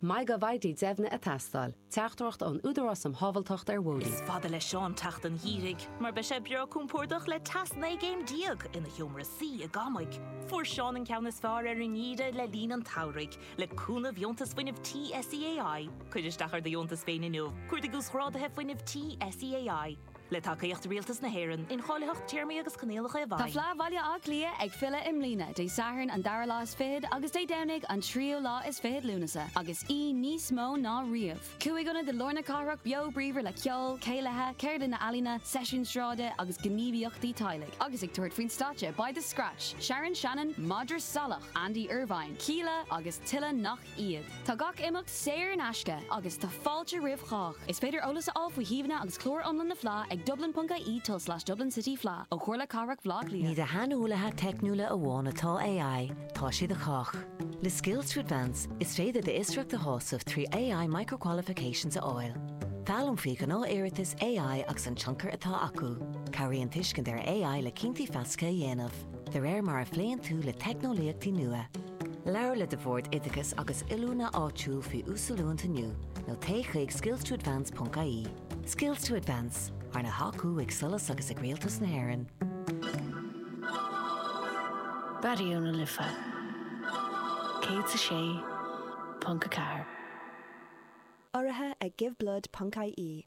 Maith go bhfaighidh deimhne a teastáil. Teachtaireacht ón Údarás um Shábháilteacht ar Bhóithre. Is fada le Seán teacht an gheimhridh mar beidh sé breá compordach le teas 19 gcéim ina sheomra suí i gCamaig. Fuair Seán an ceann is fearr ar an ngeimhreadh le linn an tsamhraidh, le cúnamh dheontas fuinnimh tí SEAI. Cuir isteach ar do dheontas féin inniu. Cuardaigh uasghráduithe fuinnimh tí SEAI. Le tacaíocht Rialtas na hÉireann, incháilitheacht Téarmaí agus Coinníollacha i bhfeidhm. Tá Fleadh Bhaile Átha Cliath ag filleadh i mbliana, Dé Sathairn an dara lá is fichead agus Dé Domhnaigh an tríú lá is fichead Lúnasa, agus í níos mó ná riamh. Cúig ionad i lár na cathrach beo bríomhar le ceol, céilithe, ceardlanna ealaíne, seisiúin sráide agus gníomhaíochtaí teaghlaigh. Agus ag tabhairt faoin stáitse beidh The Scratch, Sharon Shannon, Madra Salach, Andy Irvine, Kíla agus tuilleadh nach iad. Tá gach imeacht saor in aisce agus tá fáilte roimh chách. Is féidir eolas a fháil faoi shuíomhanna agus clár iomlán na Fleá ag dublin.ie tulslais dublincityfleadh ó Chomhairle Cathrach Bhleá Cliath. Ní do shaineolaithe teicniúla amháin atá AI, tá sé do chách. Le Skills to Advance, is féidir d'fhiosracht a shásamh trí AI Micro-Qualifications a fháil. Foghlaim faoi ghnáth-iarratais AI agus an tionchar atá acu. Cabhraíonn tuiscint ar AI le cinntí feasacha a dhéanamh. de réir mar a phléann tú le teicneolaíochtaí nua. Labhair le do Bhord Oideachais agus Oiliúna áitiúil faoi uasoiliúint inniu nó téigh chuig skillstoadvance.ie. Skills to Advance, arna thacú ag SOLAS agus ag Rialtas na hÉireann. Raidió na Life 106.4. Urraithe ag Give Blood ponc-IE.